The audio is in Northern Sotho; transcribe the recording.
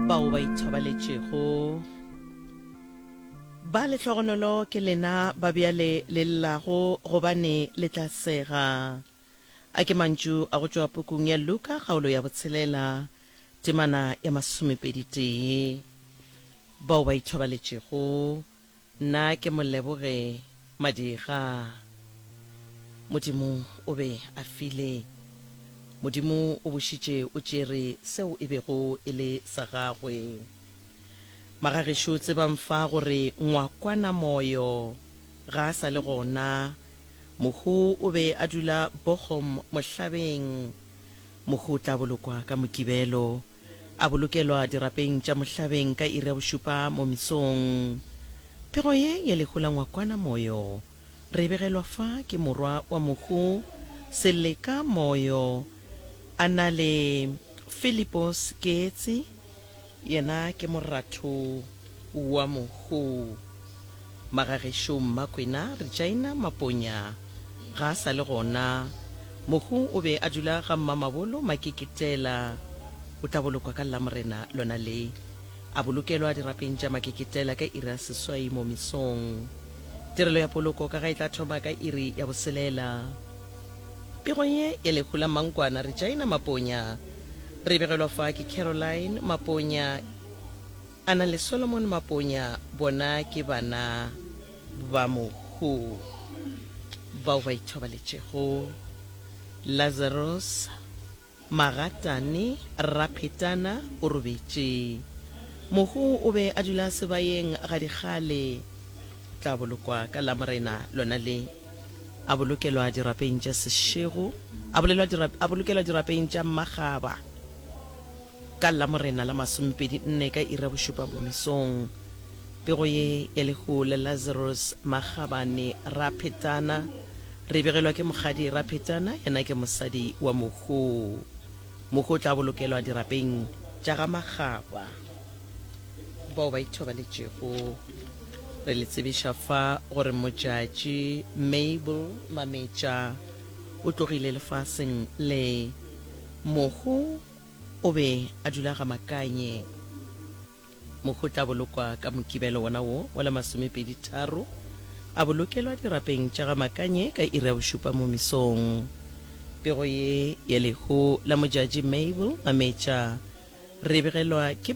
bao ba ithobaletšego ba lehlogonolo ke lena ba bjale le llago gobane le tla sega. A ke mantšu a go tšwa pukung ya Luka kgaolo ya botshelela temana ya masomepedi tee. Bao ba ithobaletšego Nna ke mo leboge Madira. Modimo o be a file. Modimo o bušitše o tšere seo e bego e le sa gagwe. Magagešo tsebang fa gore ngwakwana Moyo ga a sa le gona. Mohu o be a dula Bochum mohlabeng. Mohu o tla bolokwa ka Mokibelo. A bolokelwa dirapeng tša mohlabeng ka iri ya bošupa mo mesong. Pego ye ya lehu la ngwakwana Moyo re e begelwa fa ke morwa wa mohu Seleka Moyo a na le Philipos Keetsi, yena ke moratho. wa Mogou. Magagešo Mmakwena Regina Maponya ga a sa le gona. Mogou o be a dula ga Mmamabolo Makeketela. O tla bolokwa ka Lamorena lona le. A bolokelwa dirapeng tša Makeketela ka iri ya seswai mo mesong. Tirelo ya poloko ka ga e tla thoma ka iri ya boselela. Pego ye ya lehu la Mmankwana Regina Maponya re e begelwa fa ke Caroline Maponya. Ana le Solomon Maponya bona ke bana ba Mohu bao ba ithobaletšego, Lazarus, Magatane, Raphetana o robetše. Mohu o be a dula sebayeng gadikgale. Tla bolokwa ka Lamorena lona le. A bolokelwa dirapeng tša sešego, a, bolelwa dirap, a bolokelwa dirapeng tša mmagaba. Ka Lamorena la masomepedi nne ka iri ya bošupa bomesong, pego ye ya lehu le Lazarus Magabane Raphetana re begelwa ke Mokgadi Raphetana, yena ke mosadi wa mohu. Mohu o tla bolokelwa dirapeng tša ga Magaba. Bao ba ithobaletšego re le tsebiša fa gore Mojatši Mabel Mametša o tlogile lefaseng le. Mohu. O be a dula ga Makanye mo go tla bolokwa ka Mokibelo wona wo wa la masomepedi tharo, a bolokelwa dirapeng tša ga Makanye ka iri ya bošupa mo mesong. Pego ye ya lehu la Mojadji Mabel Mametša re e begelwa ke.